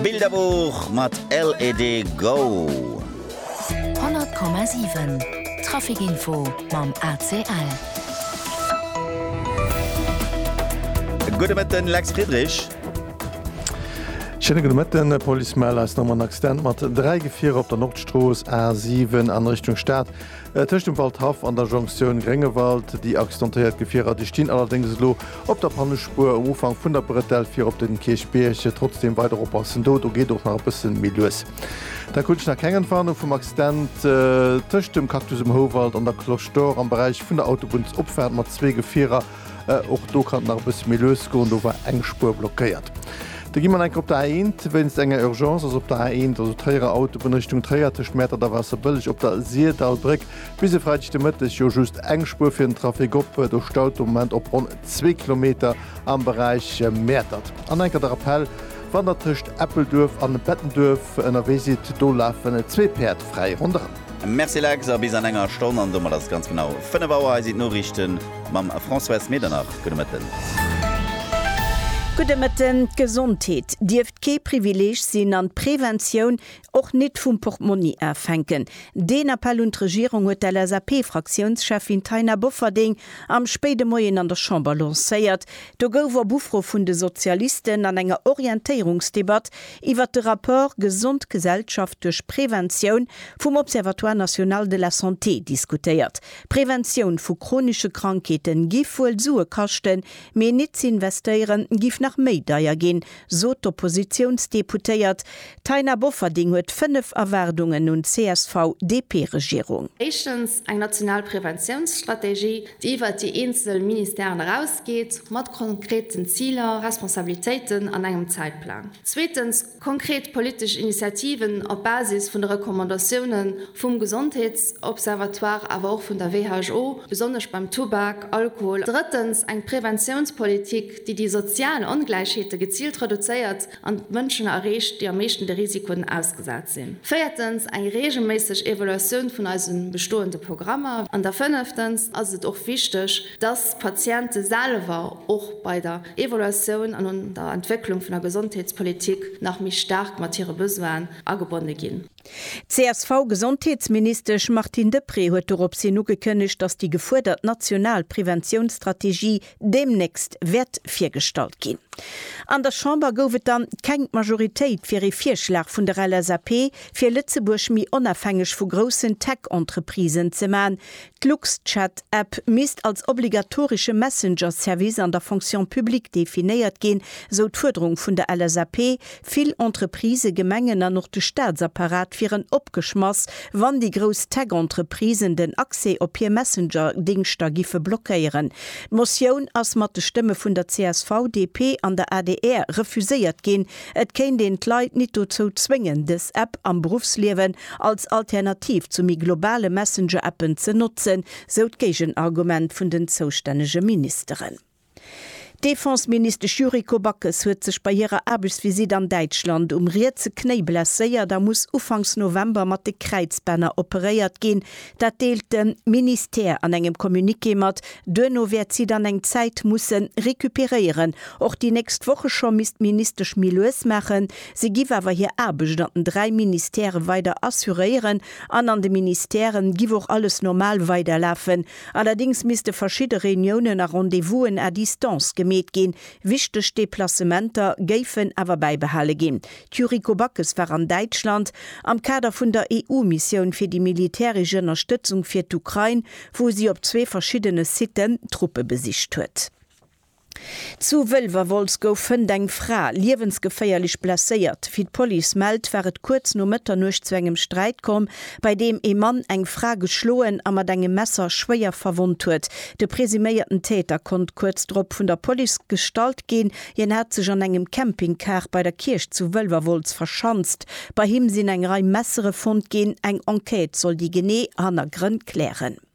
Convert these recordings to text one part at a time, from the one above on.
Bilderbuch mat LED Go! 100,7 Trafikinfo mam ACL. Gudde Mëtten, Lex Friedrich. Schéine gudde Mëtten. E Police mellt eis nom en Accident mat dräi Gefierer op der Nordstrooss, A7, an Richtung Stad. Tëscht dem Waldhaff an der Jonktioun Gréngewald, déi accidentéiert Gefierer, déi stinn allerdéngs elo op der Pannespuer um Ufank vun der Bretelle fir op de Kierchbierg. Trotzdeem weider oppassen, do do geet och nach e bësse méi lues. Da krut ech nach keng Entwarnung vum Accident tëscht dem Cactus um Houwald an der Cloche d'Or am Beräich vun der Autobunnsopfaart mat zwee Gefierer. Och do kann et nach e bësse méi lues goen, do war eng Spuer blockéiert. Da gi mer nach eng Kéier op der A1 wéinst enger Urgence. Ass op der A1, also Tréierer Autobunn Richtung Tréier, tëscht Mäertert a Waasserbëlleg op der Sirdallbréck bis e Freideg de Mëtteg jo just eng Spuer fir den Trafic op. Do staut de Moment op ronn zwee Kilometer am Beräich Mäertert. An enker de Rappell, Wann der tëscht Eppelduerf an Bettenduerf ënnerwee sidd, do lafen zwee Päerd fräi ronderëm. Merci Lex, a bis an enger Stonn, an domat ass et ganz genau 5 Auer. Hei sinn d'Noriichte mam Françoise Medernach. Gudde Mëtten. Gudde Mëtten. D'Gesondheet dierft kee Privileeg sinn an d'Preventioun och nit vum Portmonni afänken. Deen Appell un d'Regierung huet d'LSAP-Fraktiounscheffin Taina Bofferding am spéide Moien an der Chamber lancéiert. Do gouf op Ufro vun de Sozialisten an enger Orientéierungsdebatt Iwwert de Rapport Gesond Gesellschaft duerch Preventioun vum Observatoire National de la Santé diskutéiert. Preventioun vu chronische Krankheete giff wuel Sue kaschten, mee nit ze investéieren giff nach méi deier ginn, sot d'Oppositiounsdeputéiert Taina Bofferding huet 5 Erwaardungen un d'CSV-DP-Regierung. Éischtens, eng national Preventiounsstrategie, déi iwwert déi eenzel Ministèren erausgeet, mat konkreten Ziler, Responsabilitéiten an engem Zäitplang. Zweetens, konkret politesch Initiativen op Basis vun de Recommandatioune vum Gesondheetsobservatoire, awer och vun der WHO, besonnesch beim Tubak, Alkohol. Drëttens, eng Preventiounspolitik, déi déi sozial Ongläichheete geziilt reduzéiert, an d'Mënschen erreecht, déi am meeschten de Risikoen ausgesat sinn. Véiertens, eng reegelméisseg Evaluatioun vun eise bestoende Programmer. An da fënneftens ass et och wichteg, dass d'Patiente selwer och bei der Evaluatioun an un der Entwécklung vun der Gesondheetspolitik nach méi staark mat hire Besoinen agebonne ginn. D'CSV-Gesondheetsministesch Martine Deprez huet doropshin ugekënnegt, dass déi gefuerdert national Preventiounsstrategie deemnächst wäert virgestallt ginn. An der Chamber gouf et dann keng Majoritéit fir ee Virschlag vun der LSAP fir Lëtzebuerg méi onafhängeg vu groussen Tech-Entreprisen ze man. D'Luxchat App misst als obligatorische Messenger-Service an der Fonction publique definéiert ginn, sou d'Fuerderung vun der LSAP, Vill Entreprisë, Gemengen an och de Staatsapparat wieren opgeschmass, wann déi grouss Tech-Entreprisen den Accès op hir Messenger-Dingschter giffe blockéieren. D'Motioun ass mat de Stëmme vun der csv, DP an der adr refuséiert ginn. Et kéint een d'Leit nit dozou zwéngen, dës App am Beruffsliewen als Alternativ zu méi globale Messenger-Appen ze notzen, sou d'Géigenargument vun den zoustännege Ministeren. D'Defenseministesch Yuriko Backes huet sech bei hirer Aarbechtsvisitt an Däitschland um rietse Knéi blesséiert a muss ufanks November mat de Kräizbänner operéiert ginn. Dat deelt de Ministère an engem Communiqué mat. Duerno wäert si dann eng Zäit musse recuperéieren. Och déi nächst Woche scho misst d'Ministesch méi lues maachen. Si giff awer hir Aarbecht an den dräi Ministèrë weider assuréieren an an de Ministèrë giff och alles normal weiderlafen, Allerdings misste verschidde Reuniounen a Rendez-vousen à distance gemeet ginn. Wichteg Deplacementer géifen awer bäibehale ginn. D'Yuriko Backes war an Däitschland am Kader vun der EU-Missioun fir déi militäresch Ënnerstëtzung fir d'Ukrain, wou si op zwee verschiddene Siten Truppe besicht huet. Zu Wëlwerwolz gouf fënnt eng Fra liewensgeféierlech blesséiert. Wéi d'Police mellt, war et kuerz no Mëtternuecht zu engem Sträit komm, bei deem ee Mann eng Fra geschloen a mat engem Messer schwéier verwonnt huet. De presuméierten Täter konnt kuerz drop vun der Police gestallt ginn. Hien hat sech an engem Campingcar bei der Kierch zu Wëlwerwolz verschanzt. Bei him sinn eng Rei Messere fonnt ginn. Eng Enquête soll déi genee Hannergrënn klären.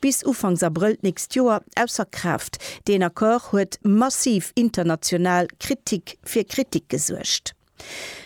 bis Ufanks Abrëll d'nächst Joer ausser Kraaft. Deen Accord huet massiv international Kritik fir Kritik gesuergt.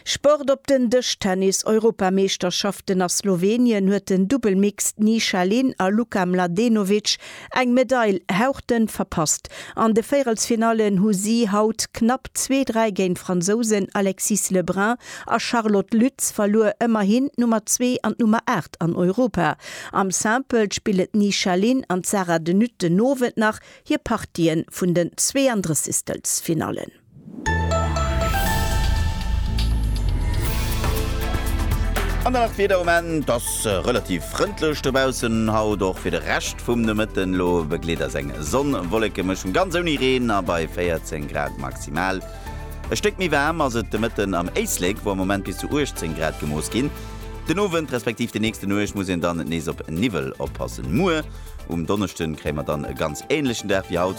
Sport op den Dësch Tennis Europameeschterschaften a Slowenien huet den Dubbel Mixed Ni Sha Lin a Luka Mladenovic eng Medail hauchdënn verpasst. An de Véierelsfinallen hu si haut knapp zwee dräi géint d'Fransousen Alexis Le Brun a Charlotte Lütz verluer. Ëmmerhin d'Nummer zwee an d'Nummer 8. Stad an Europa. Am Simple spillen d'Nisha Lin an d'Sarah de Nutte den Owend nach hir Partië vun den Zweeëndrëssigstelfsfinallen. An dann nach d'Wieder, Am Moment ass relativ frëndlech dobaussen haut, och fir de Rescht vum Nomëtten. Elo begleet eis eng Sonn-Wollekemëschung, ganz ouni Reen a bei 14 Grad maximal. E Stéck méi waarm ass et de Mëtten am Éislek, wou am Moment bis zu 18 Grad gemooss ginn. Den Owend respektiv déi nächste Nuecht muss een dann nees op Niwwel oppassen. Muer um Donneschde kréie mer dann e ganz änlechen Dag wéi haut,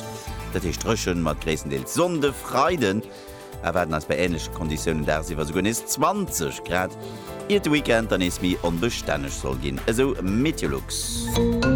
dat heescht dréchen mat gréisstendeels Sonn. De Freiden erwaarden eis bei änleche Konditiounen dagsiwwer esouguer nees 20 Grad, iert de Weekend dann nees méi onbestänneg soll ginn, esou Meteolux.